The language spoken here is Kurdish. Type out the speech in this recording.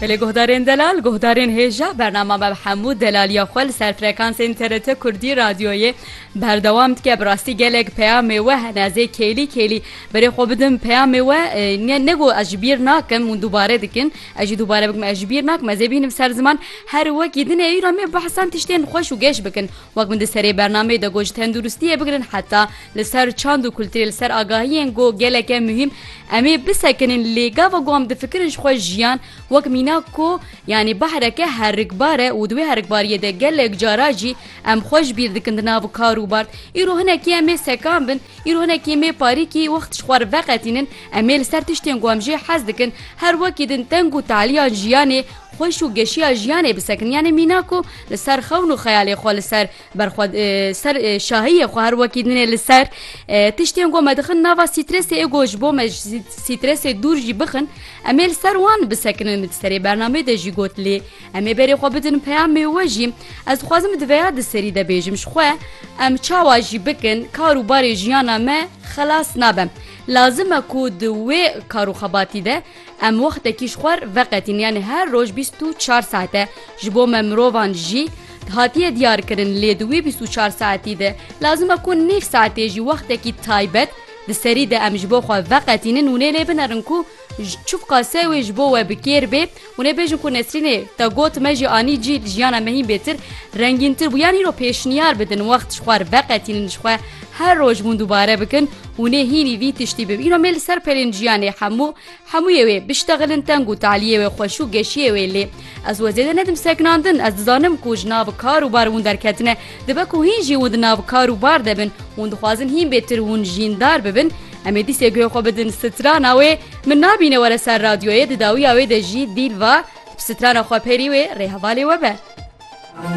Belê guhdarên delal, guhdarên hêja bernama me bi hemû delaliya xwe li ser frekansên TRT Kurdî Radyoyê berdewam dike. Bi rastî gelek peyamê we hene ez ê kêlî kêlî berê xwe bidim peyamê we ne got ez ji bîr nakim hûn dubare dikin ez jî dubare bikim ez ji bîr nakim ez ê bînim ser ziman her wekî din ê îro me behsan tiştên xweş û geş bikin wek min di serê bernameyê de got ji tenduristiyê bigirin heta li ser çand û kulturê li ser agahiyên got geleke muhîm Em ê bisekinin lê gava ku em difikirin ji xwe jiyan wek mîna ku yanî behreke herikbar e û di wê herikbariyê de gelek cara jî em xwe ji bîr dikin di nav kar û bard. Îro hinekî em ê sekan bin, îro hinekî em ê parîkî wext ji xwe re veqetînin, em ê li ser tiştên ku em jê hez dikin her wekî din teng û taliya jiyanê xweş û geşiya jiyanê bisekinin yanî mîna ku li ser xewn û xeyalê xwe li ser Ber xwe ser şahiyê xwe her wekî dinê li ser. Tiştên ku me dixin nava sîtresê ê ku ji bo me ji sîtresê dûr jî bixin em ê li ser wan bisekinin di serê bernameyê de jî got lê em ê berê xwe bidin peyamê we jî ez dixwazim di veya di serî de bêjim ji xwe em çawa jî bikin kar û barê jiyana me xelas nabe lazim e ku di wê kar û xebatî de Em wextekî ji xwer veqetîn yanî her roj bîst û çar saete ji bo me mirovan jî hatiye diyarkirin lê di wî bîst û çar saetî de lazim e ku nîv saetê jî wextekî taybet di serî de em ji bo xwe veqetînin û nê lê binerin ku çivka se wê ji bo we bi kêr bê û nê bêjin ku Nesrînê te got me jî anî cî jiyana me hîn bêtir rengîntir bû yanî îro pêşniyar bidin wext ji xwer veqetînin ji xwe her roj hûn dubare bikin û nê hînî vî tiştî bim îro me li ser pelên jiyanê hemû hemûyê wê biştexilin teng û taliyê wê xweş û geşiyê wê lê ez wê zêde nedim sekinandin ez dizanim ku ji nav kar û bar winder ketine dibe ku hîn jî win di nav kar û bar de bin hûn dixwazin hîn bêtir hûn jîndar bibin em ê dîsê guhê xwe bidin strana wê min nabîne were ser radyoyê di dawiya wê de jî dîl va strana xwe perî wê rê hevalê we be.